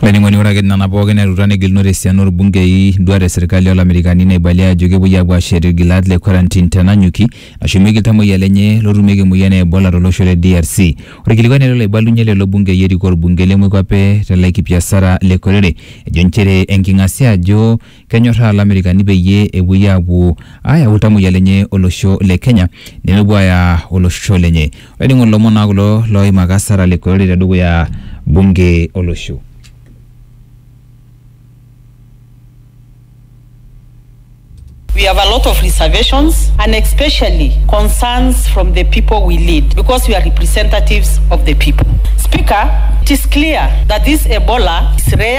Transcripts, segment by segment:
Laining'oni ore ake nena pookin etuta negilunore esiana orbungei duat e serkali olamerikani naibalia ajo kepuoi aapuo aashet irgilat le quarantine tenanyuki nashumieki iltamoyia lenye lootumieki emoyian e Ebola tolosho le DRC. Ore kilikuai nelo aibalunye lelo bungei erikoo orbungei le moikwape te Laikipia Sarah Lekorere ejo nchere enking'asia ajo Kenyorraa Lamerikani peyie epuoi aapuo aayau iltamoyia lenye olosho le Kenya nemepuo aaya olosho lenye. Olainining'oni ilomon naa kulo looimaka Sarah Lekorori tedukuya bunge olosho. We have a lot of reservations and especially concerns from the people we lead because we are representatives of the people. Speaker, it is clear that this Ebola is rare.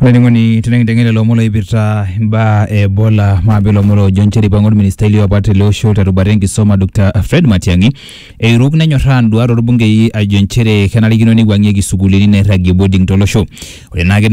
olainining'oni tenekinteng'en lelo omon oipirta imbaa e ebola maape ilomon oojo nchere eipang'a orministai liopa tele osho terubata enkisoma Dr Fred Matiang'i eiruk nenyorraa induat orbungei ajo nchere kenarikino neiwuang'ieki isukuulini nairragie boarding tolosho ore naake ina